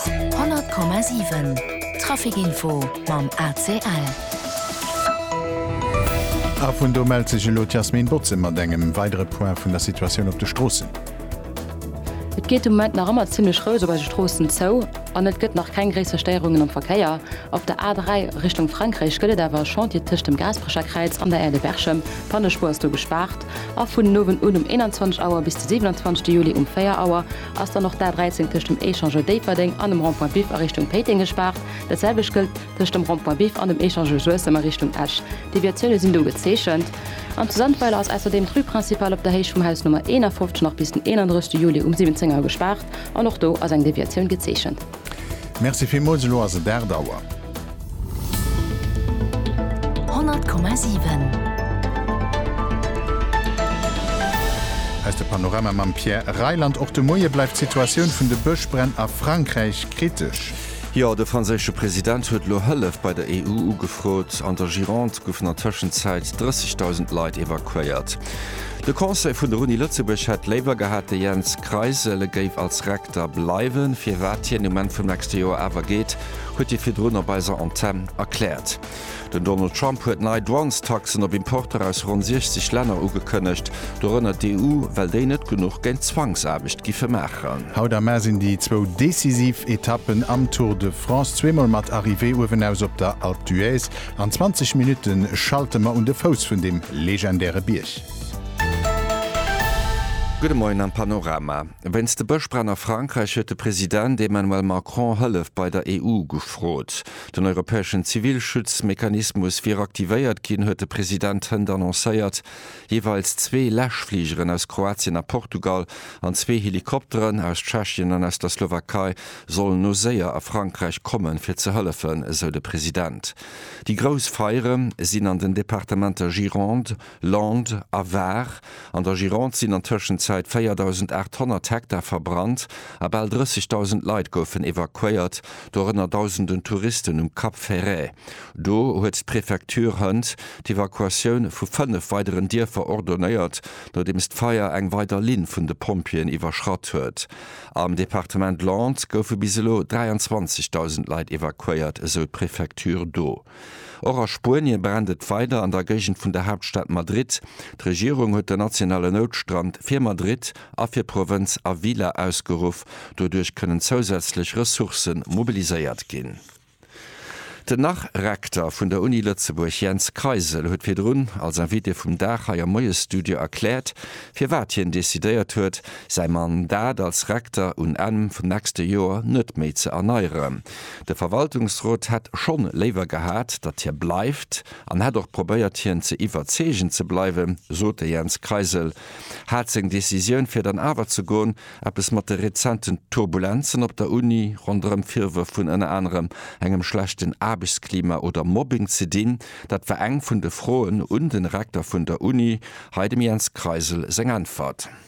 100,7 Trafic info mam ACL. A vun do mellt sech elo d'Yasmine Botze mat engem weidere Point vun der Situatioun op de Stroossen. Et geet de Moment nach ëmmer zimmlech roueg op eise Stroossen zou an et gëtt nach keng gréisser Stéierungen am Verkéier. Op der A3 Richtung Frankräich gëtt et awer e Chantier tëscht dem Gaasperecher Kräiz an der Aire de Berchem. D'Pannespuer ass do gespaart a vun den Owend un um 21 Auer bis de 27 Juli um 4 Auer Ass dann och d'A13 tëscht dem Echangeur Déifferdeng an dem Rond-point Biff a Richtung Péiteng gespaart. Dat selwecht gëllt tëscht dem Rond-point Biff an dem Echangeur Suessem a Richtung Esch. Deviatioune sinn do gezeechent. An zu Sandweiler ass ausserdeem d'Rue principale op der Héicht vum Haus Nummer 51 nach bis den 31 Juli um 17 Auer gespaart an och do ass eng Deviatioun gezeechent. Merci villmools, elo ass et 8 Auer. Aus der Panorama mam Pierre Reyland. Och de Moie bleift d'Situatioun vun de Bëschbränn a Frankräich kritesch. Jo, de franséische President huet elo Hëllef bei der EU ugefrot. An der Gironde goufen an Tëschenzäit 30.000 Leit evakuéiert. De Conseil vun der Uni Lëtzebuerg hätt léiwer gehat, de Jens Kreisel géif als Rekter bleiwen. Firwat hien um Enn vum nächste Joer awer geet, huet hie virdrun op eiser Antenn erkläert. Den Donald Trump huet nei Douanestaxen op Importer aus ronn 60 Länner ugekënnegt, dorënner d'EU, well déi net genuch géint Zwangsaarbecht giffe maachen. Haut am Mä sinn déi zwou decisiv Etappen am Tour de France, zweemol mat Arrivée uewenaus op der Alpe d'Huez. An 20 Minutte schalte mer un de Fouss vun deem legendäre Bierg. Gudde Moien am Panorama. Wéinst de Bëschbränn a Frankräich huet de President Emmanuel Macron Hëllef bei der EU gefrot. Den europäeschen Zivilschutzmechanismus wier aktivéiert ginn, huet de President hënt annoncéiert. Jeeweils zwee Läschfligeren aus Kroatien a Portugal an zwee Helikopteren aus Tschechien an aus der Slowakei sollen no séier a Frankräich kommen, fir ze hëllefen, esou de President. Déi grouss Feiere sinn an den Departementer Gironde, Landes a Var an der Gironde sinn an Tëschenzäit 4.800 Hektar verbrannt a bal 30.000 Leit goufen evakuéiert, dorënner Dausenden Touristen um Cap Ferret. Do huet d'Prefecture hënt d'Evakuatioun vu fënnef weideren Dierfer ordonéiert, nodeems d'Feier eng weider Linn vun de Pompjeeën iwwerschratt huet. Am Departement Landes goufe bis elo 23.000 Leit evakuéiert, esou d'Prefecture do. Och a Spuenie brennt et weider an der Géigend vun der Haaptstad Madrid. D'Regierung huet den nationale Noutstand fir Madrid a fir Provënz Ávila ausgeruff. Doduerch kënnen zousätzlech Ressourcë mobiliséiert ginn. Den Nach-Rekter vun der Uni Lëtzebuerg Jens Kreisel huet virdrun als Invité vum Dag hei am Moiesstudio erkläert, firwat hien decidéiert huet, säi Mandat als Rekter un Enn vum nächste Joer net méi ze erneieren. De Verwaltungsrot hätt schonn léiwer gehat, datt hie bleift an hätt och probéiert hien ze iwwerzeegen ze bleiwen, sot de Jens Kreisel. Hat seng Decisioun fir dann awer ze goen eppes mat de rezenten Turbulenzen op der Uni ronderëm Virwërf vun ënner anerem engem schlechten Aarbechtsklima oder Mobbing ze dinn? Dat war eng vun de Froen un de Rekter vun der Uni. Hei dem Jens Kreisel seng Äntwert.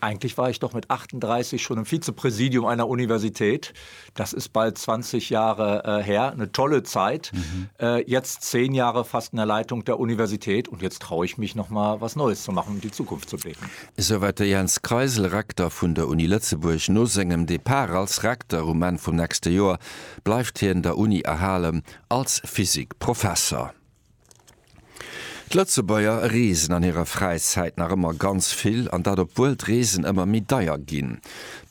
Eigentlich war ich doch mit 38 schon im Vizepräsidium einer Universität. Das ist bald 20 Jahre äh, her, eine tolle Zeit. Mhm. Äh, jetzt zehn Jahre fast in der Leitung der Universität und jetzt traue ich mich noch mal was Neues zu machen, um die Zukunft zu blicken. Soweit der Jens Kreisel, Rektor vun der Uni Lëtzebuerg. No sengem Depart als Rektor um Enn vum nächste Joer bleift hien der Uni erhalen als Physikprofesser. D'Lëtzebuerger reesen an hirer Fräizäit nach ëmmer ganz vill, an dat obwuel d'Reesen ëmmer méi deier ginn.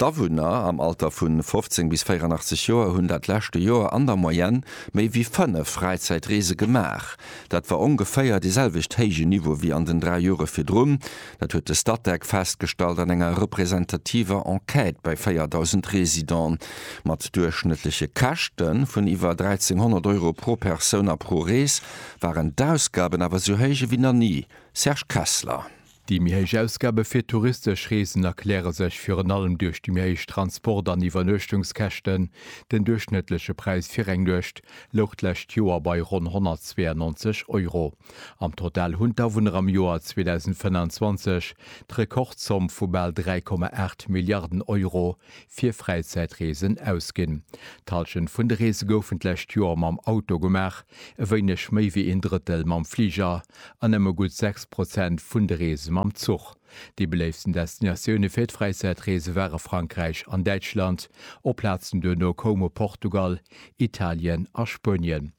D'Awunner am Alter vu 15 bis 84 Joer hunn dat leschte Joer an der Moyenne méi wéi fënnef Fräizäitreese gemaach. Dat war ongeféier dee selwecht héije Niveau wéi an den dräi Jore virdrun. Dat huet de Statec festgestallt an enger representativer Enquête bei 4.000 Residenten. Mat duerchschnëttleche Käschte vun iwwer 1.300 Euro pro Persoun a pro Rees waren d'Ausgaben awer esou héich ewéi nach ni. Serge Kessler. Déi méi héich Ausgabe fir touristesch Reesen erkläre sech virun allem duerch déi méi héich Transport an Iwwernuechtungskäschten. Den duerchschnëttleche Präis fir eng Nuecht louch d'lescht Joer bei ronn 192 Euro. Am Total hunn d'Awunner am Joer 2025 d'Rekordzomm vu bal 3,8 Milliarden Euro fir Fräizäitreesen ausginn. D'Hallschent vun de Reese goufen d'lescht Joer mam Auto gemaach, e wéineg méi wéi een Drëttel mam Fliger an nëmme gutt 6 Prozent vun de Reese mam Zuch. Déi beléiftsten Destinatioune fir d'Fräizäitreese ware Frankräich an Däitschland, oplazend duerno koume Portugal, Italien a Spuenien.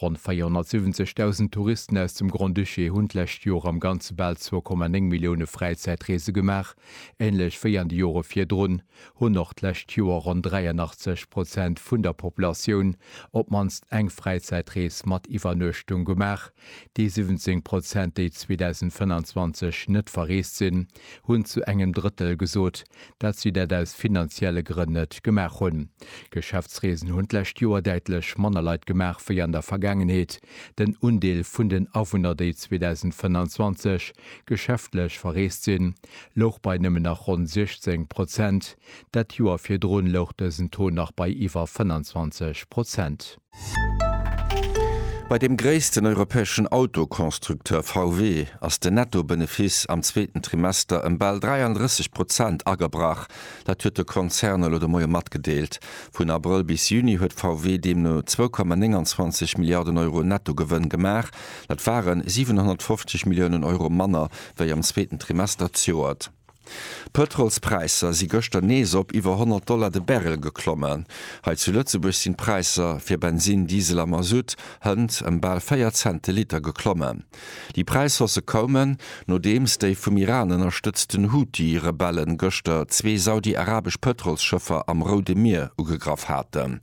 Ronn 470.000 Touristen aus dem Grand-Duché hunn d'lescht Joer am Ganze bal 2,9 Millioune Fräizäitreese gemaach, änlech wéi an de Jore virdrun. hunn och d'lescht Joer ronn 83 Prozent vun der Populatioun op d'mannst eng Fräizäitrees mat Iwwernuechtung gemaach. Déi 17 Prozent, déi 2025 net verreest sinn, hunn zu engem Drëttel gesot, dat si dat aus finanzielle Grënn net gemaach hunn. Geschäftsreesen hunn d'lescht Joer däitlech manner Leit gemaach wéi an der Vergaangenheet. Den Undeel vun den Awunner, déi 2025 geschäftlech verreest sinn, louch bei nëmmen nach ronn 16 Prozent, dat Joer virdrun louch dësen Taux nach bei iwwer 25 Prozent. Bei dem gréissten europäeschen Autoconstructeur VW ass den Netto-Benefiss am zweeten Trimester ëm bal 33 Prozent agebrach. Dat huet de Konzern elo de Moie matgedeelt. Vun Abrëll bis Juni huet VW deemno 2,29 Milliarden Euro Netto-Gewënn gemaach. Dat ware 750 Milliounen Euro manner wéi am zweeten Trimester d'Joert. D'Pëtrolspräisser si gëschter nees op iwwer 100 Dollar de Barrel geklommen. Hei zu Lëtzebuerg sinn d'Präisser fir Bensin, Diesel a Masutt hënt ëm bal 4 Cent de Liter geklommen. Déi Präishausse koumen, nodeems déi vum Iran ënnerstëtzten Houthi-Rebelle gëschter zwee saudi-arabesch Pëtrolsschëffer am Roude Mier ugegraff haten.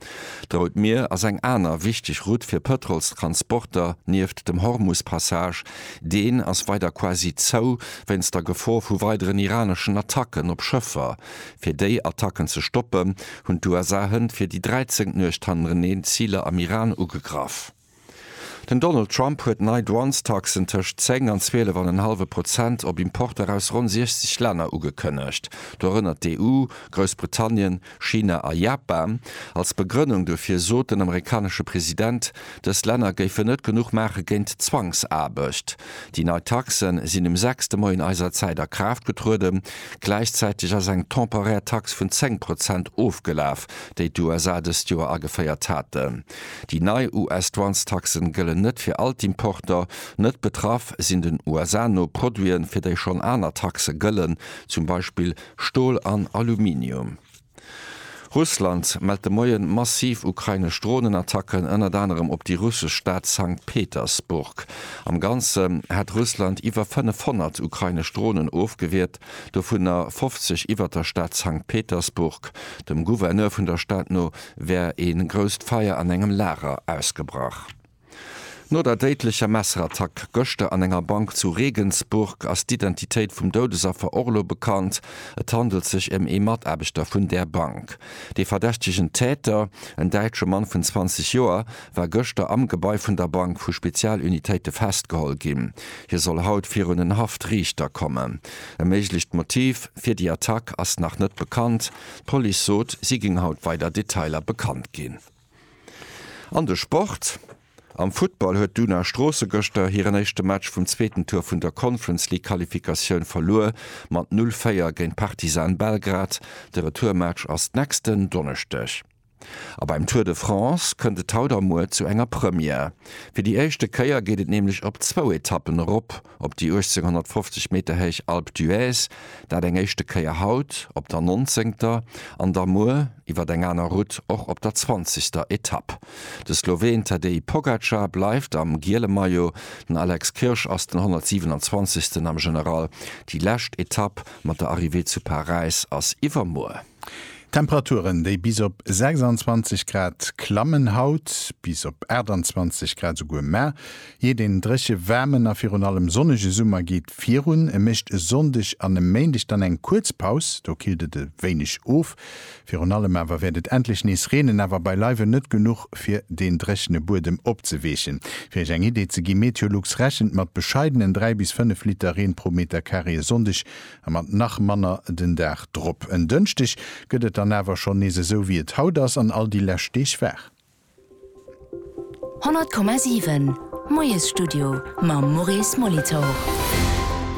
D'Rout Mier ass eng aner wichteg Route fir Pëtrolstransporter, nieft dem Hormus-Passage, Deen ass weider quasi zou, wéinst der Gefor vu weideren iraneschen Attacken op Schëffer. Fir déi Attacken ze stoppen, hunn d'USA hënt fir déi dräizéngt Nuecht hannereneen Ziler am Iran ugegraff. Den Donald Trump huet nei Douanestaxen tëscht 10 an 12 an en hallwe Prozent op Importer aus ronn 60 Länner ugekënnegt, dorënner d'EU, Groussbritannien, China a Japan, als Begrënnung dofir sot den amerikanesche President, dës Länner géifen net genuch maache géint d'Zwangsaarbecht. Déi nei Taxe sinn um sechste Moien eiser Zäit a Kraaft getrueden. Gläichzäiteg ass eng temporär Tax vun 10 Prozent ofgelaf, déi d'USA dëst Joer ageféiert haten. Déi nei US-Douanestaxen gëllen net fir all d'Importer. Net betraff sinn den USA no Produiten, fir déi schonn aner Taxe gëllen, zum Beispill Stol an Aluminium. Russland mellt de Moien massiv ukrainesch Dronenattacken, ënnert anerem op déi russesch Stad Sankt Petersburg. Am Ganzen hätt Russland iwwer 500 ukrainesch Dronen ofgewiert, dovunner 50 iwwert der Stad Sankt Petersburg. Dem Gouverneur vun der Stad no wär ee grousst Feier an engem Lager ausgebrach. No der déidlecher Messerattack gëschter an enger Bank zu Regensburg ass d'Identitéit vum Doudesaffer och elo bekannt. Et handelt sech ëm ee Mataarbechter vun där Bank. Dee verdächtegen Täter, en däitsche Mann vun 20 Joer, war gëschter am Gebai vun der Bank vu Spezialunitéite festgeholl ginn. Hie soll haut virun en Haftriichter kommen. E méiglecht Motiv fir déi Attack ass nach net bekannt. D'Police sot, si géing haut weider Detailer bekannt ginn. An de Sport, Am Futtball huet d'Una Stroosse gëschter hiren éischte Match vum zweeten Tour vun der Conference League Qualifikatioun verluer mat 0, 4 géint Partizan Belgrad. De Retourmatch ass nächsten Donneschdeg. A beim Tour de France kënnt et haut a muer zu enger Première. Fir déi éischte Kéier geet et nämlech op zwou Etappen erop. op déi 1850 Meter héich Alpe d'Huez, dat eng éischte Kéier haut op der nonzéngter an da muer iwwer eng aner Route och op der zwanzegster Etapp. De Sloween Tadej Pogacar bleift am giele Maillot, den Alex Kirsch ass den 127. am General. Déi lescht Etapp mat der Arrivée zu Paräis ass iwwermuer. D'Temperaturen, déi bis op 26 Grad klammen, haut bis op 28 Grad esouguer mar jee den dréche waarmen a virun allem sonnege Summer geet virun. E mécht e Sonndeg an e Méindeg dann eng kuerz Paus, do killt et e wéineg of. Virun allem awer wäert et endlech nees reenen, awer beileiwen net genuch fir den dréchene Buedem opzeweechen. Fir iech eng Idee ze gi, Meteolux rechent mat bescheidenen 3 bis 5 Liter Reen pro Metercarré e Sonndeg A mat nach manner den Dag drop. En Dënschdeg gëtt et dann awer schonn nees esou wéi et haut ass an all déi lescht Deeg war. 100,7 Moiesstudio mam Maurice Molitor.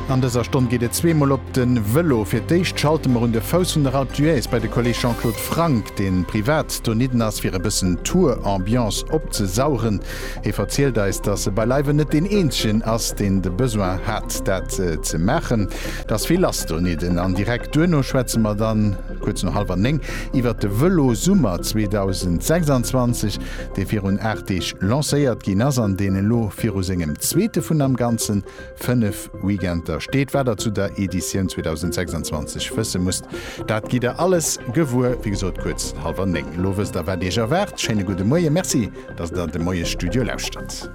An dëser Stonn geet et zwee mol op de Vëlo. Fir d'éischt schalte mer un de Fouss vun der Alpe d'Huez bei de Kolleg Jean-Claude Franck, dee privat donidden ass fir e bëssen Tour-Ambiance opzesaueren. Hie verzielt eis, datt e beileiwen net deen eenzegen ass, deen de Besoin hat, dat ze maachen. Et ass vill lass donidden. An direkt duerno schwätze mer dann, kuerz no hallwer néng, iwwert de Vëlosummer 2026, dee virun aacht Deeg lancéiert ginn ass an deen elo viru sengem zweete vun am Ganzen 5 Weekender steet, wat der zu der Editioun 2026 wësse musst. Dat gitt der alles gewuer, wéi gesot, kuerz hallwer 9. Elo wësst der, wat iech erwaart. Schéine gudde Moie. Merci, datt der de Moiesstudio lauschtert.